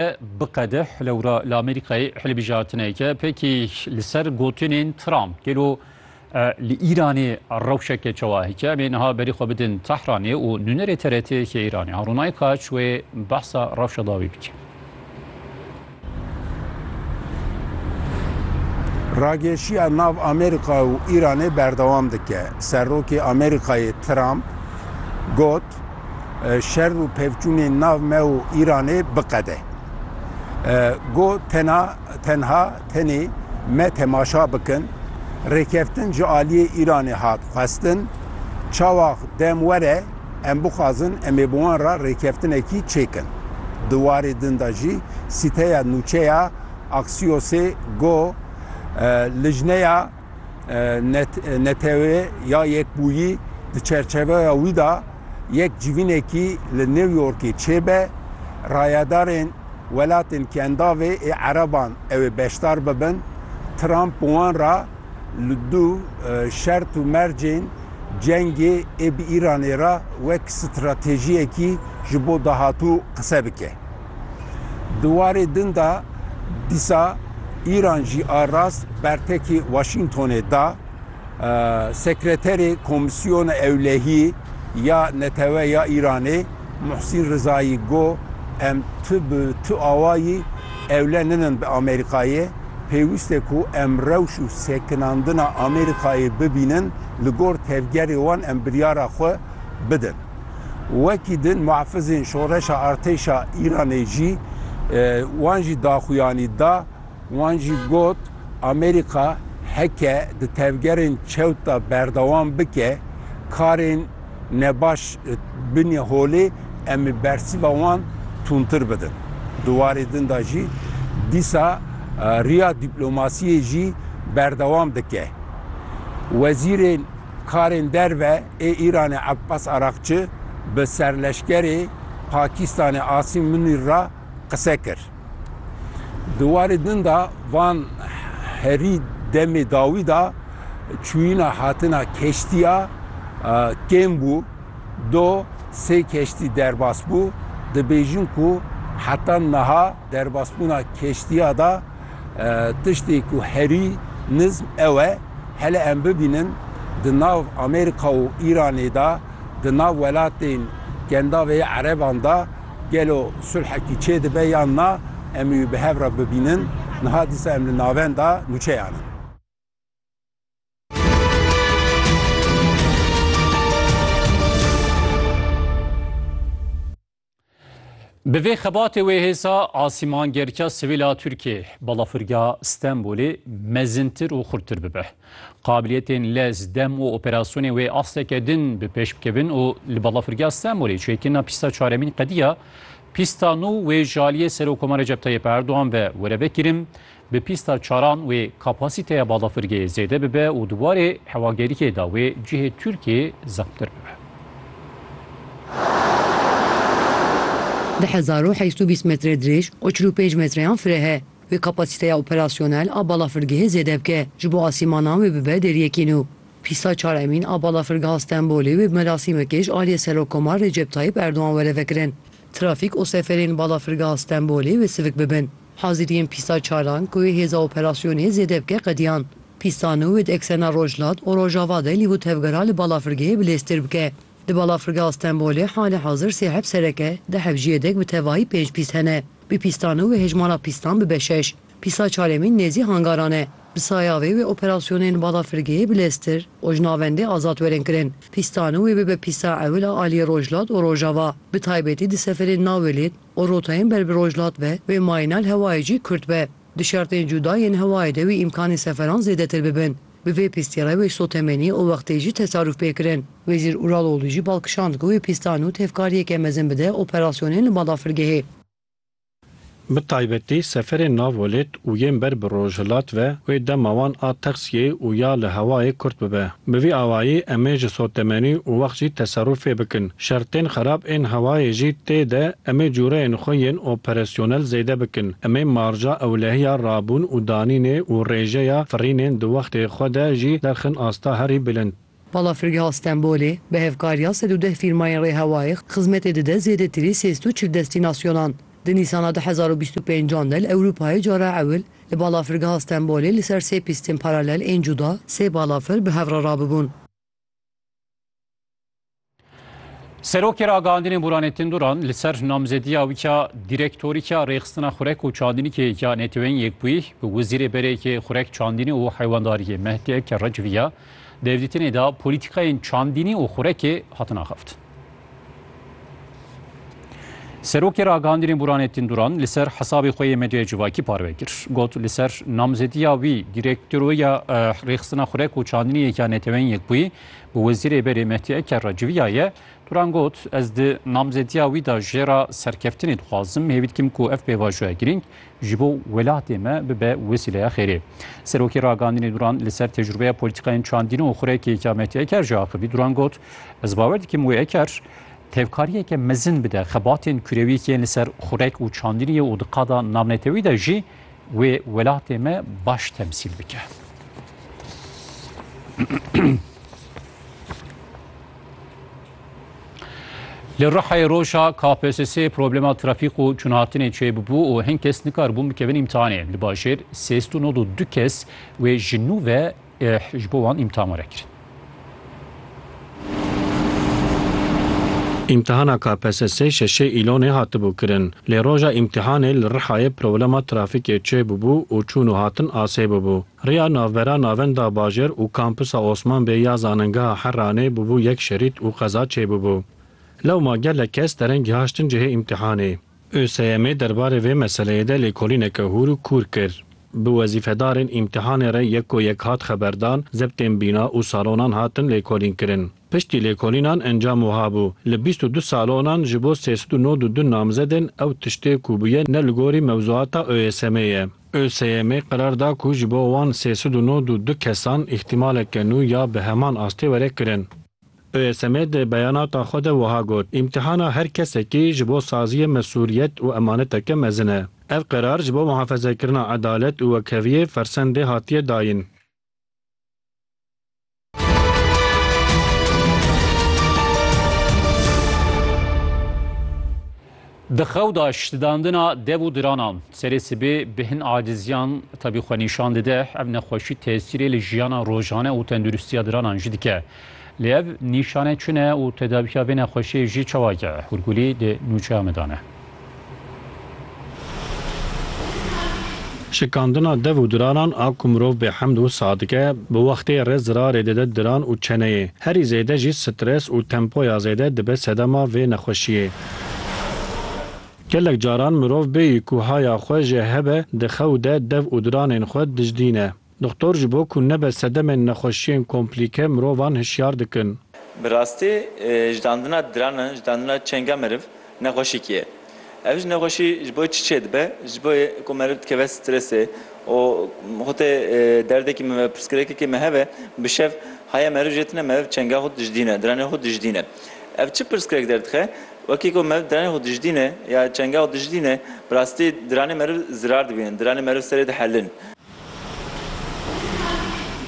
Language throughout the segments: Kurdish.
E biqede lewra li Amerîkayê hilbijartineke pêkî li ser gotinên Trump. Gelo li Îranê rewşeke çawa heke em ê niha berî xwe bidin Tehranê û nûnerê TRT'yê Îranê Harûn Aykaç wê behsa rewşa dawî bike. Rageşiya nav Amerîka û Îranê berdewam dike. Serokê Amerîkayê Trump got, şer û pevçûnên nav me û Îranê biqede. Go tena tenha tenê me temaşa bikin, rêkeftin ji aliyê Îranê hat xwestin, çawax dem were em bixwazin em ê bi wan re rêkeftinekî çêkin. Di warê din de jî sîteya nûçe ya Axiosê got lijneya, Netewê ya Yekbûyî di çerçeveya wî de yek civînekî li New Yorkê çêbe, rayedarên welatên kendavê ê ereban ew ê beşdar bibin. Trump bi wan re li du şert û mercên cengê ê bi Îranê re wek stratejiyekî ji bo dahatû qise bike. Di warê din de dîsa Îran jî a rast bertekî Washingtonê da. Sekreterê Komîsyona Ewlehî ya Netewe ya Îranê Muhsîn Rizayî got, Em tu bi tu awayî ewle ninin bi Amerîkayê. Pêwîst e ku em rewş û sekinandina Amerîkayê bibînin, li gor tevgerê wan em biryara xwe bidin. Wekî din muhafizên şoreşa artêşa Îranê jî wan jî daxuyanî da, wan jî got, Amerîka heke di tevgerên çewt de berdewam bike karên nebaş binê holê em ê bersîva wan tundtir bidin. Di warê din de jî dîsa riya dîplomasiyê jî berdewam dike. Wezîrê. Karên derve ê Îranê Abbas Araqçi bi serleşkerê Pakîstanê Asîm Munîr re qise kir. Di warê din de van herî demê dawî de çûyîna hatina keştiya kêm bû, do sê keştî derbas bû. Dibêjin ku heta niha derbasbûna keştiya de, Tiştê ku herî nizm ew e, hele em bibînin di nav Amerîka û Îranê de, di nav welatên Kendavê yê Ereban de gelo sulhekî çêdibe yan na, em wî bi hev re bibînin. Niha dîsa em li navenda nûçeyan in. Bi vê xebatê wê hêsa asîmangirka sivîla Tirkiyê balafirgeha Stenbolê mezintir û xurttir bibe. Qabiliyetên lez, dem û operasyonên wê asteke din bi pêş bikevin û li balafirgeha Stenbolê çêkirina pîsta çaremîn qediya pîsta nû wê ji aliyê Serokkomar Recep Tayyip Erdogan ve were vekirin, Bi pîsta çaran wê kapasîteya balafirgehê zêde bibe û di warê hewagerîkê de wê cihê Tirkiyeyê zexmtir bibe. Di hezar û heşt û bîst metre dirêj û çil û pênc metreyan fireh e. Wê kapasîteya operasyonel a balafirgehê zêde bike, ji bo asîmanan wê bibe deriyekî nû. Pîsta çar emîn a balafirgeha Stenbolê wê bi merasîmekê ji aliyê Serokkomar Recep Tayyip Erdogan were vekirin. Trafîk û seferên balafirgeha Stenbolê wê sivik bibin. Haziriyên pîsa çaran ku hêza operasyonê zêde bike qediyan. Pîsa nû wê di eksena Rojhilat û Rojava de lîv û tevgera li balafirgehê bilêztir bike. Di balafirgeha Stenbolê halê hazir sê heb serek e, di heb jî yedek bi tevahî pênc pîs hene. Bi pîsta nû wê hejmara pîstan bibe şeş. Pîsa çaremîn nêzî hangaran e. Bi saya vê wê operasyonên li balafirgehê bilêztir û ji navendê azad werin kirin. Pîsta nû wê bibe pîsa ewil a aliyê Rojhilat û Rojava, bi taybetî di seferên navê lêd, û rotayên ber bi rojhilat be, wê mayîna li hewayê jî kurt be. Di şertên cuda yên hewayê de wî îmkanên seferan zêdetir bibin. Bi vê pîstî re wê sotemenî û wextê jî tesarûf pê kirin. Wezîr Uraloglû jî bal kişand ku wê pîstan û tevkariyeke mezin bide operasyonên li Badafirgehê. Bi taybetî seferên nav welêt û yên ber bi rojhilat ve wê dema wan a texsiyê û ya li hewayê kurt bibe. Bi vî awayî em ê ji sotemenî û wext jî teserûfê bikin. Şertên xerab ên hewayê jî tê de em ê cûreyên xwe yên operesyonel zêde bikin. Em ê marja ewlehiya rabûn û danînê û rêjeya firînên di wextê xwe de jî derxin asta herî bilind. Balafirgeha Stenbolê bi hevkariya sed û deh fîrmayên rêhewayê xizmetê dide zêdetirî sêst û çil destînasyonan. Di Nîsana du hezar û bîst û pênc an de li Ewropayê cara ewil li balafirgeha Stenbolê li ser sê pîstên paralel ên cuda sê balafir bi hev re rabûbûn. Serokê ragihandinê Muranê Tinduran li ser namzediya wî ya dîrektorî ya rêxistina xurek û çandînîkê ya Neteweyên Yekbûyî bi Wezîrê Berêkê Xurek Çandînî û Heywandariyê Mehdi Eke Recivî ya derdîtinê de polîtîkayên çandînî û xurekê hatin axaftin. Serokê ragihandinê Muranê Tinduran li ser hesabê xwe yê medyaya civakî parve kir. Got li ser namzediya wî dîrektoroya rêxistina xurek û çandîniyê ya Neteweyên Yekbûyî Wezîrê berê Mehdî Eker re civiyaye, Turan got, Ez di namzediya wî de jê re serkeftinê dixwazim, hêvî dikim ku ev pêvajoya girîng ji bo welatê me bibe wesîleya xêrê. Serokê ragandinê Duran li ser tecrubeya polîtîkayên çandîn û xurekêka Mehdî Eker jî axivî, Duran got, Ez bawer dikim wê Eker tevkariyeke mezin bide xebatên kurewî yên li ser xurek û çandînê ye û di qada navnetewî de jî Wê welatê me baş temsîl bike. Li Rihayê roja KPSS'ê problema trafîk û çûnhatinê çêbûbû û hin kes nikaribûn bikevin îmtihanê. Li bajêr sêst û nod û du kes wê ji nû ve Êh, ji bo wan îmtihan were kirin. Îmtihana KPSS'ê şeşê Îlonê hatibû kirin. Lê roja îmtihanê li Rihayê problema trafîkê çêbûbû û çûn û hatin asê bûbû. Riya navbera Navenda Bajêr û Kampisa Osman Bey ya Zanîngeha Heranê bûbû yek şerît û qeza çêbûbû. Lewma gelek kes derengî haştin cihê îmtihanê. ÖSYM'ê derbarê vê meseleyê de lêkolîneke hûr û kûr kir. Bi wezîfedarên îmtîhanê re yek ku yek hat xeberdan, zebtên bîna û salonan hatin lêkolînkirin. Piştî lêkolînan encam wiha bû, Li bîst û du salonan ji bo sê sed û nod û du namzedên ew tiştê ku bûye ne li gorî mewzuata ÖSYM'ê ye. ÖSYM'ê qerar da ku ji bo wan sê sed û nod û du kesan îhtîmaleke nû ya bi heman astê were kirin. OSM di beyanata xwe de wiha got, Îmtîhana her kesekî ji bo saziyê mesuliyet û emaneteke mezin e. Ev qerar ji bo muhafezekirina edalet û wekheviyê fersendê hatiye dayîn. Di xew de şitidandina dev û diranan serê sibê bi hin aciziyan tevî xwe nîşan dide. Ev nexweşî tesîrê li jiyana rojane û tenduristiya diranan jî dike. Lê ev nîşane çi ne û tedawiya vê nexweşiyê jî çawa ye? Hûrgulî di nûçeya me de ne. Şikandina dev û diranan a ku mirov bê hemd û sax dike, bi wextê re zirarê dide diran û çeneyê. Herî zêde jî stres û tempoya zêde dibe sedema vê nexweşiyê. Gelek caran mirov bêyî ku haya xwe jê hebe di xew de dev û diranên xwe dijdîne. Doxtor ji bo ku nebe sedemên nexweşiyên komplîke mirovan hişyar dikin. Bi rastî jidandina diranan, jidandina çenga meriv nexweşîkî ye. Ev ji nexweşî ji bo çi çêdibe? Ji bo yê ku meriv dikeve stresê û xwe tê derdekî min ve, pirsgirêkekî min hebe bi şev haya meriv jê tune meriv çenga xwe dijdîne, diranên xwe dijdîne. Ev çi pirsgirêk derdixe? Wekî ku meriv diranê xwe dijdîne ya çengê xwe dijdîne, bi rastî diranê meriv zirar dibînin, diranê meriv serê dihelin.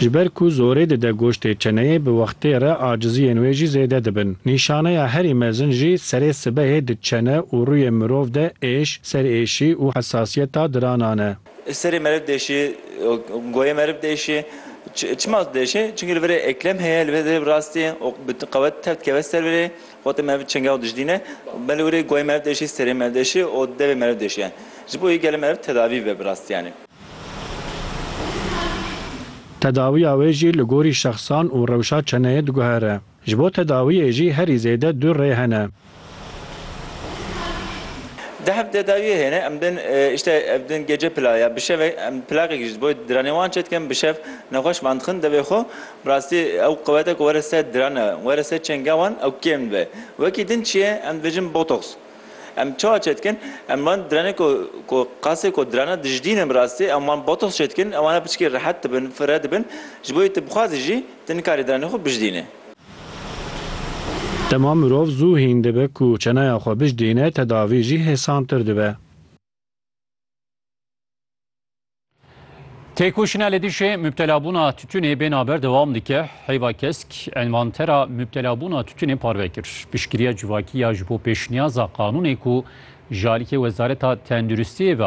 Ji ber ku zorê dide goştê çeneyê bi wextê re aciziyên wê jî zêde dibin. Nîşaneya herî mezin jî serê sibehê di çene û rûyê mirov de êş, serêşî û hesasiyeta diranan e. Serê meriv deşê, goyê meriv deşê. Çima deşê? Çimkî li vir e eklem heye, li vir e bi rastî û bi qewet tev dikeve ser vir e, xwetê meriv bi çingex dijdîne. Belê wir e goyê meriv deşê, serê meriv deşê û devê meriv deşê yani. Ji bo wê gelê meriv tedavî bibe bi rastî yani. Tedawiya wê jî li gorî şexsan û rewşa çeneyê diguhere. Ji bo tedawiyê jî herî zêde du rê hene. Di hev tedawiyê hene, em din îşte ev din gece pila ya bi şeve em plaqekî ji bo diranê wan çedikin bi şev nexweş van dixin devê xwe bi rastî ew quwete ku were ser dirane were ser çenga wan ew kêm dibe wekî din çi ye em dibêjin botox Em çawa çêdikin? Em van diranê ku ku qasê ku dirana dijdînin bi rastî em wan botox çêdikin ew wana piçikê rehet dibin, firre dibin. Ji bo yê tu bixwazî jî tu nikarî diranê xwe bijdînê. Dema mirov zû hîn dibe ku çeneya xwe bijdîne tedavî jî hêsantir dibe. Têkoşîna li dijî mubtelabûna titûnê bêna ber dewam dike. Heyva kesk envantera mubtelabûna titûnê parve kir. Piştgiriya civakî ya ji bo pêşniyaza qanûnê ku ji aliyê Wezareta Tenduristiyê ve